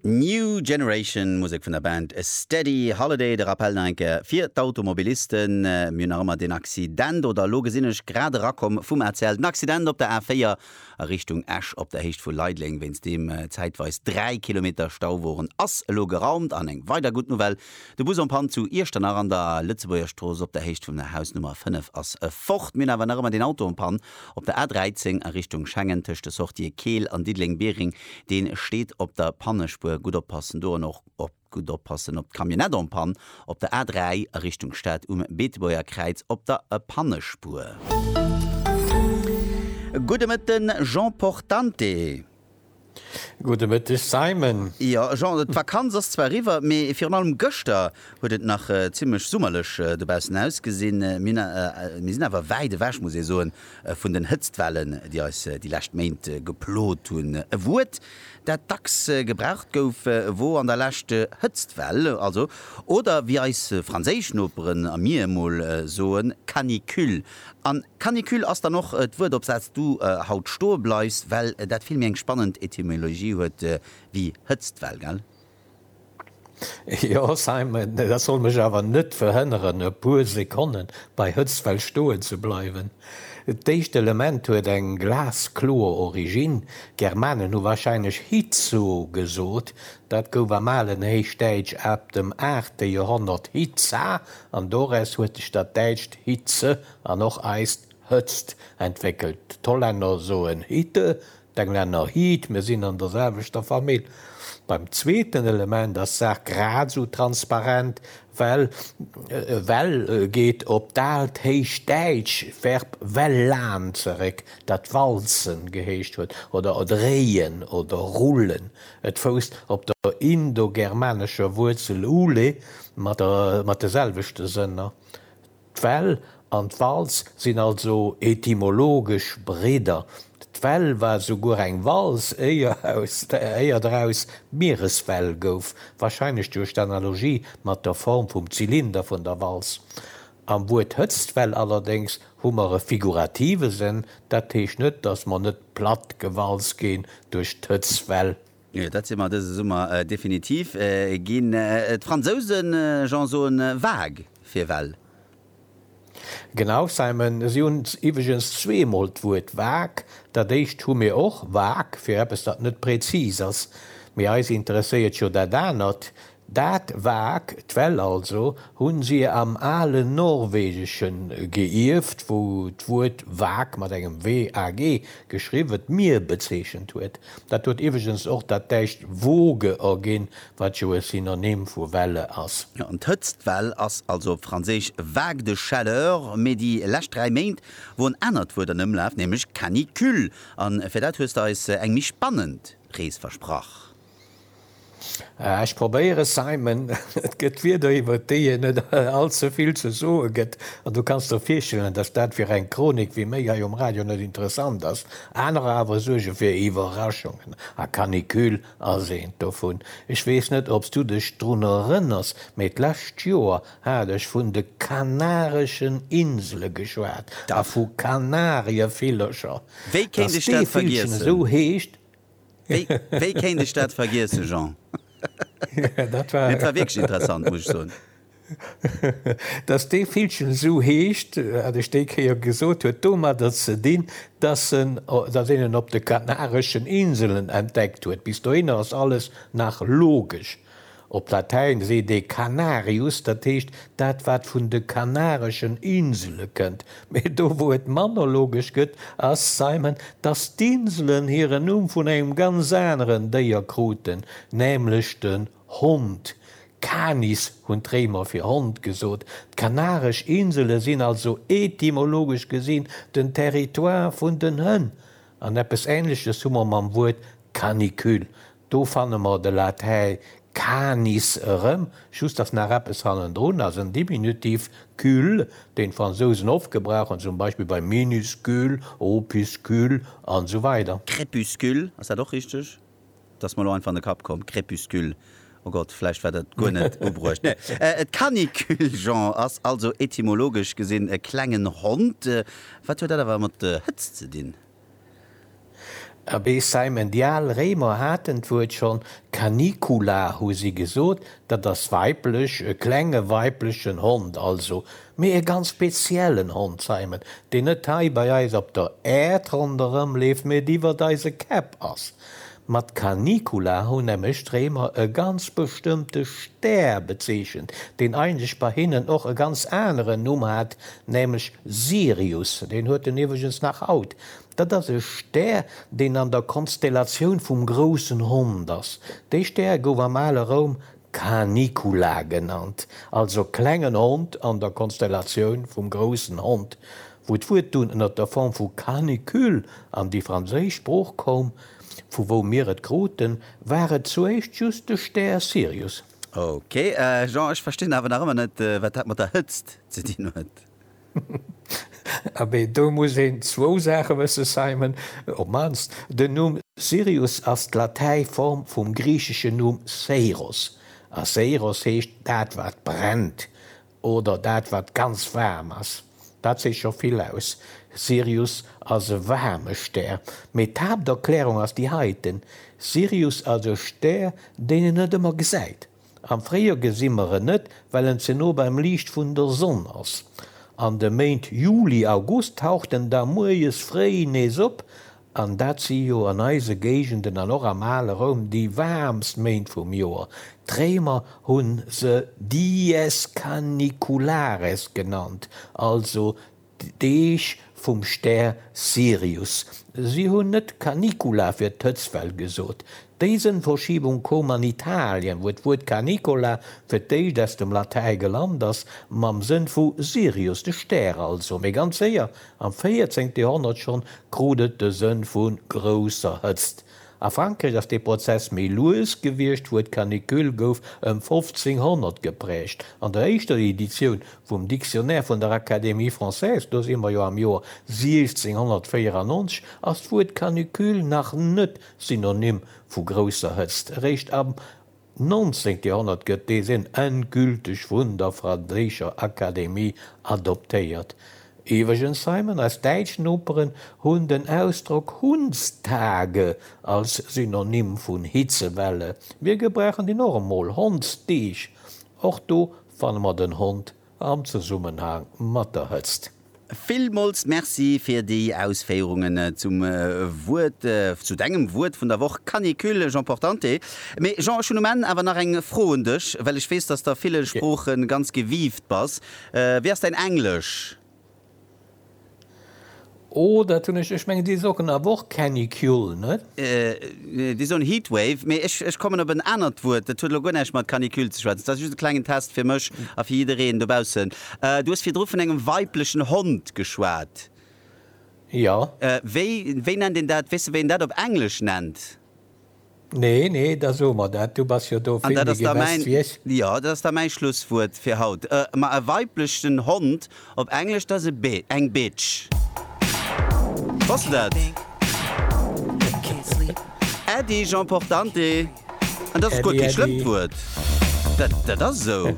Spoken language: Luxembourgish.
New Generation, Musek vun der Band Steady Holiday. De Rappell nach eng Kéier fir d'Automobilisten, Mir hunn nach ëmmer deen Accident, oder elo gesinn ech, grad erakomm vum ACL, den Accident op der A4 a Richtung Esch op der Héicht vu Leideleng, wéinst deem zäitweis 3 Kilometer Stau woren, ass elo geraumt. An eng weider gutt Nouvelle, De Bus en panne zu Iechternach an der Lëtzebuergerstrooss op der Héicht vun der Hausnummer 5 ass fort. Mir hunn awer nach ëmmer deen Auto en panne Op der A13 a Richtung Schengen tëscht de Sortië Keel an Diddeleng-Biereng, dee steet op der Pannespuer, gutt oppassen do an och gutt oppassen op d'Camionnette en panne op der A3 a Richtung Stad um Beetebuerger Kräiz op der Pannespuer. Gudde Mëtten, Jean Portante. Gudde Mëtteg Simon. Jo Jean, d'Vakanz ass zwar eriwwer, mee virun allem gëschter huet et nach zimmlech summerlech dobaussen ausgesinn. Mir sinn awer wäit ewech, muss ee soen, vun den Hëtztwellen, déi eis déi lescht Méint geplot hunn. E Wuert, dat dacks gebraucht gouf, wor an der Lescht Hëtztwell, also, oder wéi eis franséisch Noperen a mir emol soen, Canicule. An Canicule ass dann och d'Wuert op saz du haut stoe bleifs, well dat vill méi eng spannend Etymologie huet wéi Hëtztwell, gell? Jo Simon, dat soll mech awer net verhënneren e puer Sekonne bei Hëtztwell stoen ze bleiwen. D'éischt Element huet eng glaskloer Originn, d'Germanen hu warscheinlech Hitzo gesot, dat gouf am alen Héichdäitsch ab dem aachte Joerhonnert Hitza An doraus huet sech dat däitscht Hitze an och eist Hëtzt entwéckelt. D'Hollänner soen Hitte, d'Englänner Heat, mir sinn an der selwechter Famill. Beim zweeten Element ass d'Saach grad esou transparent, well well geet op d'alt héichdäitsch Verb well'an zeréck, dat walzen geheescht huet oder dréien oder rullen. Et fousst op der indogermanescher Wuerzel ule mat de selwechte Sënner. D'Well an d'Walz sinn also etymologesch Bridder. D'Well war souguer eng Walz, éier draus d'Miereswell gouf, wahrscheinlech duerch d'Analogie mat der Form vum Zylinder vun der Walz. Am Wuert Hëtztwell allerdéngs hu mer e figurative Sënn, dat heescht net, datt mer net platt gewalzt ginn duerch d'Hëtztwell. Jo, dat si mer dëse Summer definitiv ginn. D'Fransousen, Jean, soen vague fir Well. Genau, Simon. Si hunn iwweregens zweemol d'Wuert vague. Dat éischt hu mir och, vague, fir eppes, dat net prezis ass. Mee eis interesséiert jo dat anert, Dat vag, d'Well also, hu si am alen Norwegesche geierft, wou d'Wuert vag, mat engem WAG geschriwwen, d'Mier bezeechent huet. Dat huet iwweregens och dat däitscht Woge erginn, wat jo e Synonym vu Welle ass. Jo, an d'Hëtztwell ass also op Franséisch vague de chaleur. Mee déi lescht dräi Méint wor en anert Wuert an Ëmlaf, nämlech canicule. A fir dat hues de eis eng méi spannend Rees versprach. Ech probéieren, Simon. Et gëtt Wierder, iwwer déi een net allze vill ze soe gëtt. An du kanns der virstellen, datt dat fir eng Chronik wéi méi hei um Radio net interessant ass. Anerer awer suerge fir Iwwerraschungen. A Canicule ass eent dovun. Ech weess net, ob s du dech drun erënners, mee d'lescht Joer hat ech vun de Kanareschen Insele geschwat a vu Kanarievillercher. Wéi kéint ech dat vergiessen? Datt dee Villchen esou heescht. Wéi kéint ech dat vergiessen, Jean? Dat war wierklech interessant, muss ech soen. Dass dee Villchen esou heescht, wat ech déi Kéier gesot huet, domadder ze dinn, dass een en op de Kanareschen Inselen entdeckt huet. Bis dohinner ass alles nach logesch. Op Latäin seet ee Canarius, dat heescht dat wat vun de Kanareschen Insele kënnt. Mee do wou et mann ologesch gëtt, ass Simon, datt d'Inselen hiren Numm vun engem ganz aneren Déier kruten, nämlech den Hond. Canis hunn d'Réimer fir Hond gesot. D'Kanaresch Insele sinn also etymologesch gesinn den Territoire vun den Hënn. An eppes Änleches hu mer mam Wuert canicule, Do fanne mer de Latäi canis erëm, just datt nach eppes hannendrun ass, en Diminutiv, cul, deen d'Fransousen oft gebrauchen, zum Beispill bei minuscule, opuscule an esou weider. Crépuscule, ass dat och richteg? Dat ass mer elo einfach an de Kapp komm, crépuscule, o Gott, vläicht war dat guer net ubruecht. Nee, et canicule, Jean, ass also etymologesch gesinn e klengen Hond. Wat huet dat awer mat Hëtzt ze dinn? Abee Simon, déi al Réimer haten d'Wuert schonn, canicula hu si gesot, dat ass weiblech, e klenge weiblechen Hond also, mee e ganz speziellen Hond, Simon, deen net hei bei eis op der Äerd ronderëmleeft, mee et iwwert eise Käpp ass. Mat Canicula hunn nämlech d'Réimer e ganz bestëmmte Stär bezeechent, deen eigentlech bei hinnen och e ganz aneren Numm hat, nämlech Sirius. Deen huet en iwwregens nach haut. Dat ass e Stär, deen an der Konstellatioun vum groussen Hond ass. Dee Stär gouf am ale Roum Canicula genannt, also klengen Hond an der Konstellatioun vum groussen Hond. Wou d'Wuert dunn ënner der Form vu canicule an déi franséisch Sprooch koum, vu wou mir et kruten, war et zuéischt just de Stär Sirius. Ok, Jean, ech verstinn awer nach ëmmer net, wat dat mat der Hëtzt ze dinn huet. Abee, do muss een zwou Saache wësse, Simon, op d'mannst den Numm Sirius ass d'Latäi Form vum griicheschen Numm Seiros, a Seiros heescht dat wat brennt, Oder dat wat ganz waarm ass. Dat seet scho vill aus. Sirius ass e waarme Stär. Mee d'Haapterklärung ass déi heiten, Sirius ass e Stär, deen een net ëmmer gesäit. Am Fréijoer gesi mer en net, well en ze no beim Liicht vun der Sonn ass. An de Méint Juli, August taucht en da muerjes fréi nees op An dat si jo an eise Géigenden an och am ale Roum déi waarmst Méint vum Joer. D'Réimer hu se dies caniculares genannt, also d'Deeg vum Stär Sirius. Si hunn net canicula fir d'Hëtztwell gesot, D'Déisenverschiebung koum an Italien, wou d'Wuert Canicola fir d'éischt aus dem Latäi gelant ass, mam Sënn vu Sirius, de Stär also. Mee ganz séier, am 14. Joerhonnert schonn, krut et de Sënn vu grousser Hëtzt. A Frankräich ass dee Prozess méi lues gewiescht, d'Wuert canicule gouf ëm 1500 gepräägt. An der éischter Editioun vum Dictionnaire vun der Académie française, do si mer jo am Joer 1694, ass d'Wuert canicule nach net Synonym vu grousser Hëtzt. Eréischt am 19. Joerhonnert gëtt dee Sënn endgülteg vun der franséischer Akademie adoptéiert. Iwwregens, Simon, eis däitsch Noperen hunn den Ausdrock Hundstage als Synonym vun Hitzewelle. Mir gebrauchen deen och emol, Hondsdeeg. Och do fanne mer den Hond. am Zesummenhang mat der Hëtzt. Villmools Merci fir déi Ausféierungen zum Wuert, zu dengem Wuert vun der Woch, Canicule, Jean Portante. Mee Jean, ech hunn um Enn awer nach eng Fro un dech, well ech weess, dass s de a ville Sprooche ganz gewieft bass. Wéi ass däin Englesch? Oh, dat hunn ech, ech mengen déi socken awer och Canicule, net? Neen, déi soen Heatwave, mee ech kommen op en anert Wuert, dat huet elo guer näischt mat Canicule ze schwätzen. Dat ass just e klengen Test fir mech a fir jiddereen dobaussen. Du hues virdru vun engem weiblechen Hond geschwat. Jo. Wéi, wéi nennt een dat, weess de wéi een dat op Englesch nennt? Nee, nee, da so mer dat, du bass jo do vill méi gewesst wéi ech. Jo, dat ass da mäi Schlusswuert fir haut. Ma e weiblechen Hond op Englesch, dat ass e, eng Bitch. Wosst de dat? Äddi, Jean Portante. An dat ass guer kee schlëmmt Wuert. Dat ass esou.